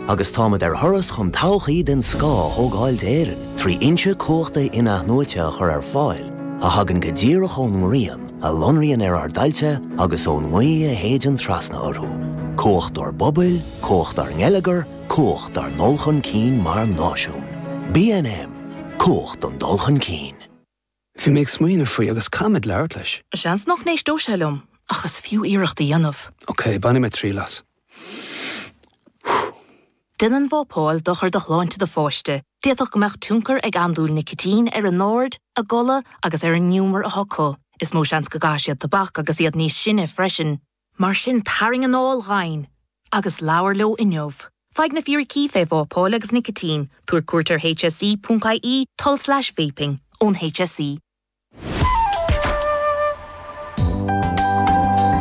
Agus táimid ar thuras chun todhchaí den scoth a thógáil d'Éirinn trí fhoinse cumhachta in-athnuaite a chur ar fáil a thagann go díreach ón ngrian, a lonraíonn ar ár dtailte agus ón ngaoth a shéideann trasna orthu. Cumhacht dár bpobail, cumhacht dár ngeilleagar, cumhacht dár ndul chun cinn mar náisiún. BNM, Cumhacht don dul chun cinn. Bhí mé ag smaoineamh faoi agus caithfidh mé labhairt leis. Seans nach n-éisteodh sé liom, ach is fiú iarracht a dhéanamh. Ok, bainfidh mé triail as. Déanann vápáil dochar do shláinte do pháiste, d'fhéadfadh go mbeadh tionchar ag andúil nicitín ar a n-aird, a gcodladh agus ar an ngiúmar atá acu. Is mó seans go gcaithfidh siad tobac agus iad níos sine freisin. Mar sin tarraing anáil dhomhain agus labhair leo inniu. Faigh na fíricí fé vápáil agus nicitín, tabhair cuairt ar hse.ie, tulslais vaping, ón HSE.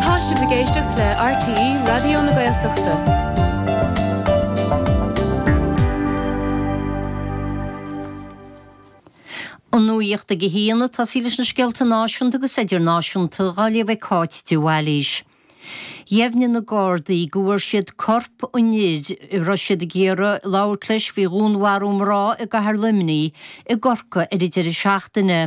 Tá sibh ag éisteacht le RTÉ Raidió na Gaeltachta. An nuacht ag a haon atá sí leis na scéalta náisiúnta agus idirnáisiúnta dhá léamh ag Cáit de Bhailís. Dheimhnigh na Gardaí go bhfuair siad corp an fhir a raibh siad ag iarraidh labhairt leis faoi dhúnmharú mná i gcathair Luimnigh i gCorcaigh ar an deireadh seachtaine.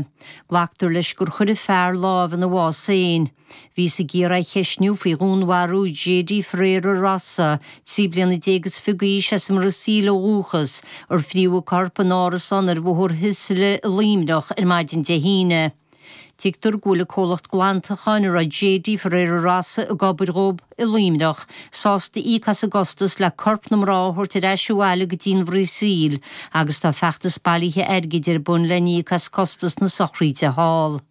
Glactar leis gur chuir an fear lámh ina bhás féin. Bhíothas ag iarraidh é a cheistniú faoi dhúnmharú JD Ferreira Rossa, trí bliana déag is fiche d'aois as an mBrasaíl ó dhúchas, ar frítheadh a corp in árasán ar Bhóthar Sicily i Luimneach ar maidin Dé hAoine. Tuigtear go bhfuil an comhlacht glantacháin a raibh JD Ferreira Rossa ag obair dhó i Luimneach sásta íoc as an gcostas le corp na mná a thabhairt ar ais abhaile go dtí an Bhrasaíl agus tá feachtas bailithe airgid ar bun le n-íoc as costas na sochraíde thall.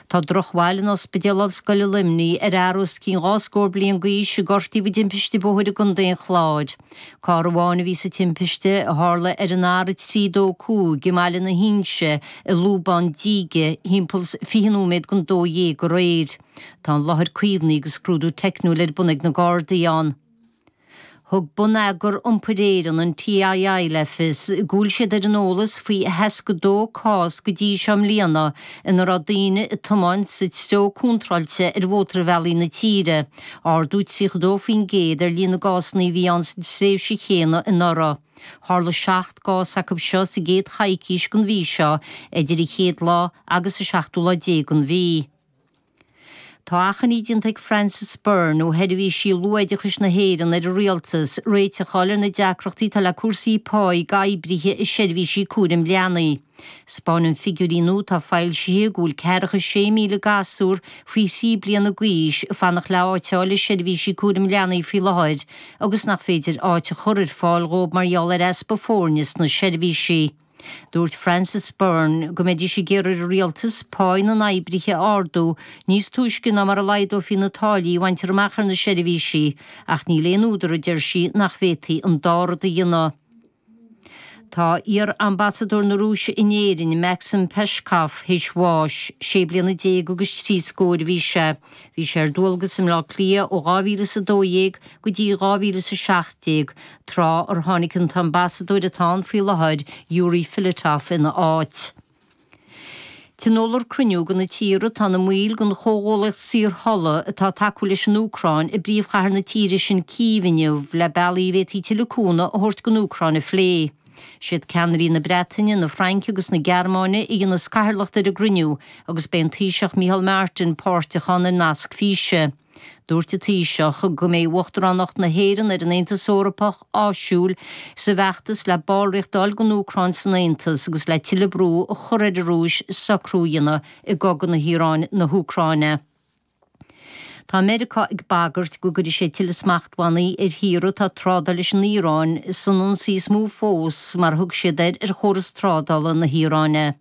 Tá drochbhail in Ospidéal Ollscoile Luimnigh ar fhear os cionn dhá scór bliain d'aois a gortaíodh i dtimpiste bóthair i gContae an Chláir. Carr amháin a bhí sa timpiste, a tharla ar an R325 i mBaile na hInse i Lúbán Díge thimpeall 20 nóiméad don 12 aréir. Tá an láthair caomhnaithe agus scrúdú teicniúil ar bun ag na Gardaí ann. Thug Bonneagar Iompair Éireann, an TII, le fios go bhfuil siad ar an eolas faoi 62 cás go dtí seo i mbliana ina raibh daoine ag tiomáint sa treo contráilte ar mhótarbhealaí na tíre, ardú 32% ar líon na gcásanna a bhí ann sa tréimhse chéanna anuraidh. Tharla seacht gcás acu seo sa gcéad choicís den mhí seo, idir an chéad lá agus an seachtú lá déag den mhí. Tá achainí déanta ag Frances Byrne ó Sheirbhísí Luathoideachais na hÉireann ar an Rialtas réiteach a fháil ar na deacrachtaí atá le cúrsaí páí d'oibrithe i seirbhísí cúraim leanaí. 'Spáineann figiúirí nua atá foilsithe go bhfuil ceathracha is sé míle gasúr faoi thrí bliana gaois ag fanacht le áit a fháil i seirbhísí cúraim leanaí faoi láthair agus nach féidir áit a chur ar fáil dhóibh mar gheall ar easpa foirne sna seirbhísí. Dúirt Frances Byrne go mbeidís ag iarraidh ar an Rialtas páí na n-oibrithe a ardú níos túisce ná mar a laghdófaí na táillí a bhaintear amach ar na seirbhísí ach níl aon údar, a deir sí, nach bhféadfaí an dá rud a dhéanamh. Tá iar-ambasadóir na Rúise in Éirinn, Maxim Peshkov, théis bháis. Sé bliana déag agus trí scór a bhí sé. Bhí sé ar dualgas i mBleá Cliath ó 2012 go dtí 2017. tráth ar tháinig an t-ambasadóir atá ann faoi láthair, Yury Filatov, ina áit. Tionólfar cruinniú de na tíortha atá ina mbaill den chomhghuallaíocht saorthola atá ag tacú leis an Úcráin i bpríomhchathair na tíre sin Cív inniu le bealaí a bhféadfaí tuilleadh cúnamh a thabhairt don Úcráin a phlé. Is iad ceannairí na Breataine, na Fraince agus na Gearmáine a dhéanas cathaoirleacht ar an gcruinniú agus beidh an Taoiseach Micheál Martin páirteach ann ar nasc físe. Dúirt an Taoiseach go mbeidh Uachtaránacht na hÉireann ar an Aontas Eorpach áisiúil sa bhfeachtas le ballraíocht a fháil don Úcráin san Aontas agus le tuilleadh brú a chur ar an Rúis socrú a dhéanamh i gcogadh na hIaráin, na hÚcráine. Tá Meiriceá ag bagairt go gcuirfidh sé tuilleadh smachtbhannaí ar thíortha atá ag trádáil leis an Iaráin san ionsaí is mó fós, mar a thug siad air, ar chóras trádála na hIaráine.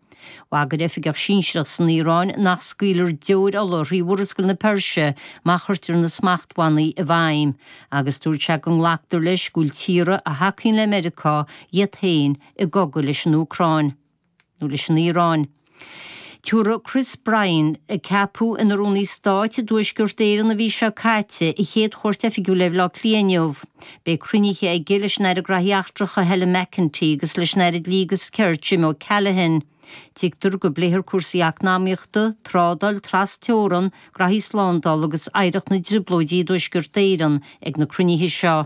Bhagair oifigeach sinsearach san Iaráin nach scaoilfear deoir ola thrí Mhurascaill na Peirse má chuirtear na smachtbhannaí i bhfeidhm, agus dúirt sé go nglactar leis go bhfuil tíortha a thacaíonn le Meiriceá iad féin i gcogadh leis an Úcráin, nó leis an Iaráin. Tabharfaidh Chris Bryant, a ceapadh ina Rúnaí Stáit i dTuaisceart Éireann an mhí seo caite, a chéad chuairt oifigiúil ar Bhleá Cliath inniu. Beidh cruinnithe aige leis an Aire Graithí Eachtracha Helen McEntee agus leis an Aire Dlí agus Cirt Jim O'Callaghan. Tuigtear go bpléifear cúrsaí eacnamaíochta, trádáil trasteorann, graithí slándála agus oidhreacht na dTrioblóidí i dTuaisceart Éireann ag na cruinnithe seo.